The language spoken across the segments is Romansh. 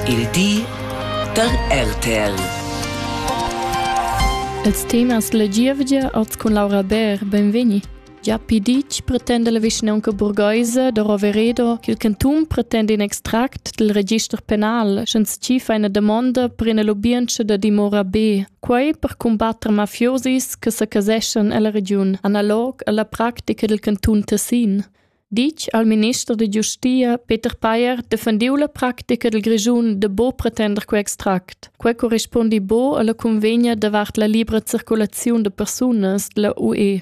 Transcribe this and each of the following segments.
Il di da RTL. Els temas la gievgia oz cun Laura Bär, benvegni. Gia piditg pretenda la vischnaunca burgheisa da Roveredo ch'il cantun pretenda in extract dal register penal, sch'ins tschifa ina damonda per ina lubientscha da dimora B. Quei per combatter mafiosis che sa caseschan ella regiun, analog alla practica dil cantun Tessin. ditg al minister da giustia Peter Payer defendiu la practica dil Grischun de bo pretender quei extract. Quei corrispondi bo alla convegna davart la libra circulaziun de persunas della UE.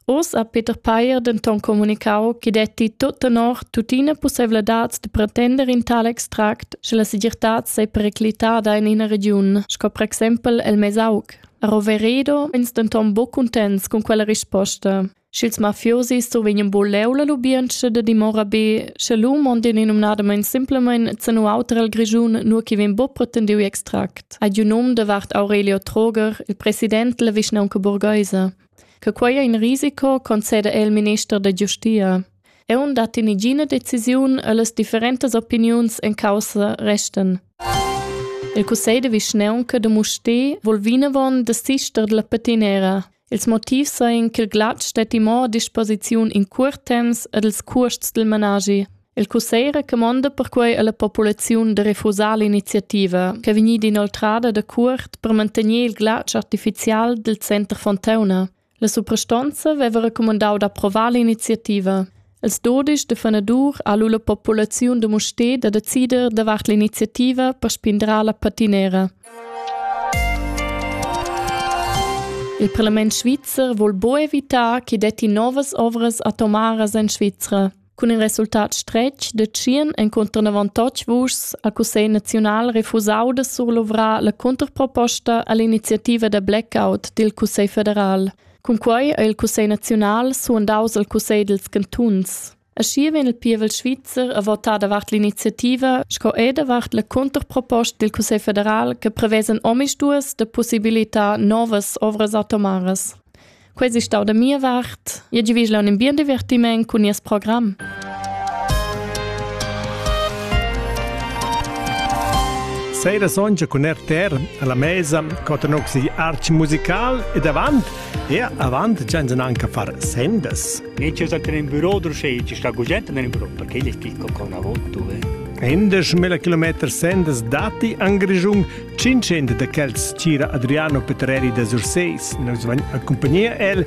Oz ha Peter Payer denton comunicau che detti tot tenor tuttina possibilitads de pretender in tal extract, sche la segirtad sei periclitada in ina region, sco per exempel el Mesauc. A Roveredo ins denton bo contents con quella risposta. Sch'ils mafiosi survegnan buleu la lubientscha da dimora be, sche lu mondien numnadamein simplemein zenu auter el Grischun, nur chi vegn buc pretendiu extract. Ad un um davart Aurelio Troger, il president della vischnaunca burgheisa. Che quei è in risico, concede el minister da giustia. Eu dat in igina decisiun e las differentas opiniuns en causa resten. Il cussegl de vischnaunca de Musti vol vinavon de sister della patinera. Ils motivs ein ch'il glatsch stetti mo a disposiziun in cuort temps ed ils cuosts dil managi. Il cussegl recamonda perquei alla populaziun da refusar l'iniziativa, ch'è vegnida inoltrada da cuort per mantener il glatsch artificial dil center Fontauna. La suprastonza veva recumandau d'approvar l'iniziativa. Els dudisch da fanadur ha lu la populaziun da Mustér da decider davart l'iniziativa per spindrar la patinera. Il parlament svizzer vul bo evitar che detti novas ovras atomaras en Svizra. Cun in resultat stretg de tschien encontran avantatg vuschs al Cussegl naziunal refusau de surluvrar la contrproposta all'iniziativa da blackout dil Cussegl federal. Cunquei ha il cussegl naziunal suandaus al cussegl dils cantuns. Aschi vegn il pievel svizzer a votar davart l'iniziativa sco er davart la cunterproposta dil Cussegl federal che prevesen omisduas de possibilità novas ovras atomaras. Quei si stau da mia vart. Jeu givisch un bien divertiment cun nies program. Sera sonja cun RTR alla mesa cotanoxi arch musical ed avant e avant gianzen anche far sendas. Ne c'è stato in bureau dove c'è sta gente nel bureau perché gli chicco con una volta dove Endes mila kilometr sendas dati an Grischung, 500 de quels tira Adriano Petreri de Surseis, nos vagn a compagnia el